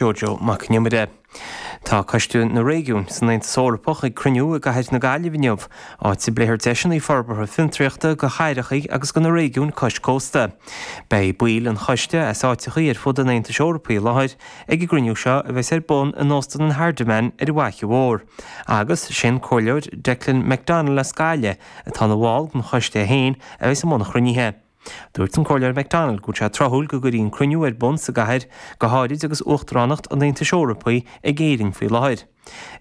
Jojo Mac an Iomaire. Tá Coiste na Réigiún san Aontas Eorpach ag cruinniú i gcathair na Gaillimh inniu, áit a bpléifear deiseanna forbartha fiontraíochta do cheantracha agus do na réigiúin cois cósta. Beidh baill an choiste as áiteachaí ar fud an Aontais Eorpaigh i láthair ag an gcruinniú seo a bheas ar bun in Óstan an Hardiman ar an bhFaiche Mhór, agus sé'n Comhairleoir Declan McDonnell as Gaillimh atá ina bhall den choiste é féin a bheas i mbun an chruinnithe. Dúirt an Comhairleoir McDonnell go bhfuil sé tráthúil go gcuirí an cruinniú ar bun sa gcathair, go háirid agus Uachtaránacht an Aontais Eorpaigh ag Éirinn faoi láthair.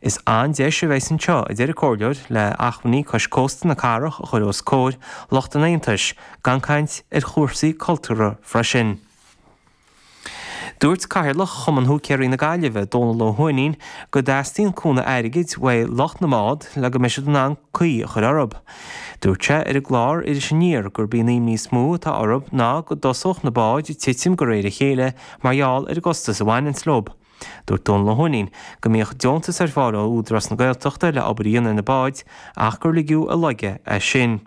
Is an-deis a bheidh san seo, a deir an Comhairleoir, le achmhainní cois cósta na cathrach a chur os comhair lucht an Aontais, gan caint ar chúrsaí cultúrtha freisin. Dúirt Cathaoirleach Chumann Húicéirí na Gaillimhe, Dónal Ó hUaithnín, go dteastaíonn cúnamh airgid uaidh lucht na mbád le go mbeidh siad in ann caoi a chur orthu. Dúirt sé ar an gclár Iris Aniar gurb í an imní is mó atá orthu ná go dtosódh na báid ag titim de réir a chéile mar gheall ar an gcostas a bhaineanns leo. Dúirt Dónal Ó hUaithnín go mbíodh deontas ar fáil ó Údarás na Gaeltachta le obair a dhéanamh ar na báid ach gur ligeadh i léig é sin.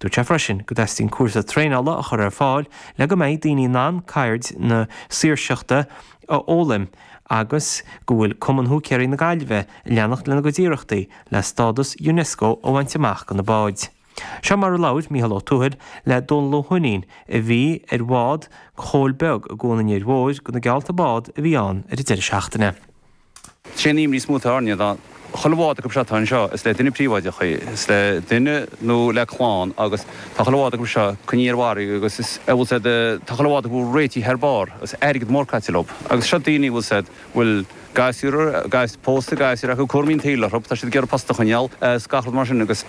Dúirt sé freisin go dteastaíonn cúrsa traenála a chur ar fáil le go mbeidh daoine in ann ceird na saoirseachta a fhoghlaim agus go bhfuil Cumann Húicéirí na Gaillimhe ag leanacht lena gcuid iarrachtaí le stádas Unesco a bhaint amach do na báid. Seo mar a labhair Micheál Ó Tuathail le Dónal Ó hUaithnín a bhí ar bhád Chóil Bhig i gCuan an Fhir Mhóir do na geallta bád a bhí ann ar an deireadh seachtaine. Sé an imní is mó atá orainne ná chuile bhád acu seo atá anseo, is le duine príobháideach í, is le duine nó le clann agus tá chuile bhád acu seo coinnithe ar farraige agus a bhfuil siad, tá chuile bhád acu réitithe thar barr agus airgead mór caite leo. Agus seo daoine a bhfuil siad, bhfuil gasúir, pósta, gasúir acu, cúraimí an tsaoil orthu, tá siad ag iarraidh post a choinneáil is gach rud mar sin agus.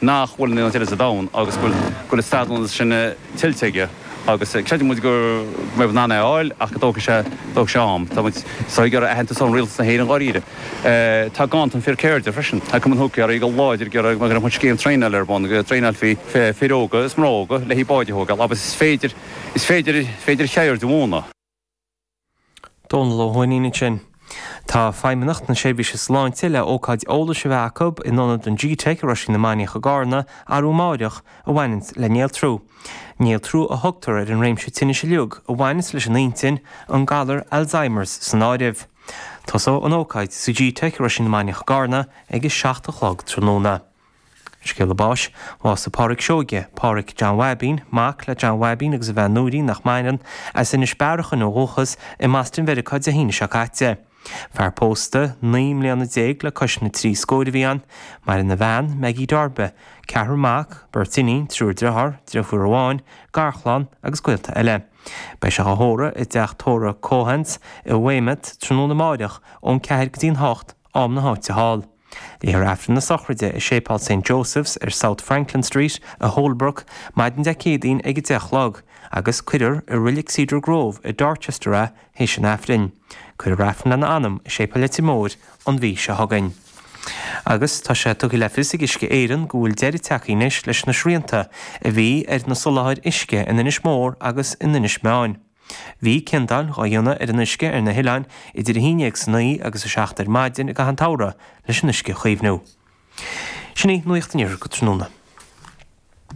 nach bhfuil in aon áit eile sa domhan agus go bhfuil an stádas sin tuillte aige agus creideann muid go mbeidh muid in ann é a fháil ach go dtógfaidh sé dtógfaidh sé am. Tá muid ag súil le aitheantas ón Rialtas na hÉireann dháiríre. Tá ganntan fir ceirde freisin. Tá Cumann Húicéirí go láidir ag iarraidh go mbeadh scéim traenála ar bun, go dtraenáilfí fir óga is mná óga le haghaidh báid a thógáil agus is féidir is féidir féidir ceird a mhúineadh. Dónal Ó hUaithnín ansin. Tá Feidhmeannacht na Seirbhíse Sláinte le ócáid eolais a bheith acu in ionad an gteic i Roisín na Mainiach i gCarna arú amáireach a bhaineanns le néaltrú. Néaltrú a thugtar ar an réimse tinnis uiliug a bhaineanns leis an intinn, an galar Alzheimers san áireamh. Tosóidh an ócáid sa gteic i Roisín na Mainiach i gCarna ag a seacht a chlog tráthnóna. Scéala Báis, Bhásaigh Pádhraic Seoige, Pádhraic John Bháibín, mac le John Bháibín agus a bhean Nóirín, nach maireann, as Inis Bearachain ó dhúchas, i mBoston Mheiriceá Dé hAoine seo caite. Fear pósta naoi mbliana déag le cois na trí scóir a bhí ann. Maireann a bhean, Maggie Deáirbe, ceathrar mac, beirt iníon, triúr driothár, dreifiúr amháin, garchlann agus gaolta eile. Beidh sé á thórramh i dteach tórraimh Keohane's i Weymouth tráthnóna amáireach ón ceathair go dtí an hocht, am na háite thall. Léifear Aifreann na Sochraide i Séipéal Saint Joseph's ar South Franklin Street i Holbrook maidin Dé Céadaoin ag a deich a chlog agus cuirfear i Reilig Cedar Grove i Dorchester a théis an Aifrinn. Cuirfear Aifreann lena anam i Séipéal Leitir Móir an mhí seo chugainn. Agus tá sé tugtha le fios ag Uisce Éireann go bhfuil deireadh tagtha anois leis na srianta a bhí ar na soláthair uisce in Inis Mór agus in Inis Meáin. Bhí ciondáil dhá dhéanamh ar an uisce ar na hoileáin idir a haon déag san oíche agus a seacht ar maidin i gcaitheamh an tsamhraidh leis an uisce a chaomhnú. Sin í nuaíocht an Iarthar go tráthnóna.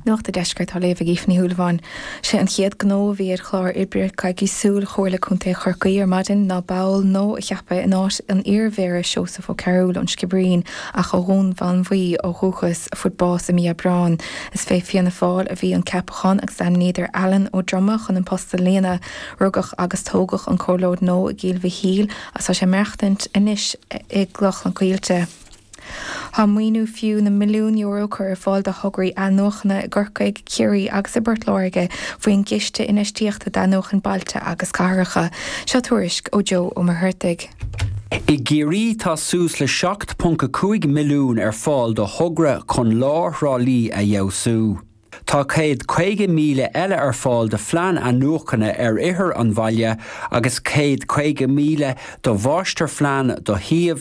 Nuacht a' Deiscirt á léamh ag Aoife Ní Shúilleabháin. Sé an chéad gnó a bhí ar chlár oibre coicísiúil Chomhairle Contae Chorcaí ar maidin ná ball nua a cheapadh in áit an iar-Mhéara Seosamh Ó Cearúil ón Sciobairín ach ó Dhún Mánmhaí ó dhúchas a fuair bás i mí Aibreán Is fé Fianna Fáil a bhí an ceapachán agus ainmníodar Alan Ó Droma chun an post a líonadh. Rugadh agus tógadh an comhairleoir nua i gCill Mhichíl ach tá sé ag maireachtaint anois i gCloch na Coillte. Tá maoiniú fiú na milliún euro curtha ar fáil do thograí athnuachana i gCorcaigh, Ciarraí agus i bPort Láirge faoin gCiste Infheistíochta d'Athnuachan Bailte agus Cathracha. Seo tuairisc ó Joe Ó Muircheartaigh. I gCiarraí tá suas le 7.5 milliún ar fáil do thogra chun lár Thrá Lí a fheabhsú. Tá céad caoga míle eile ar fáil do phlean athnuachana ar oirthear an bhaile agus céad caoga míle do mháistirphlean do shuíomh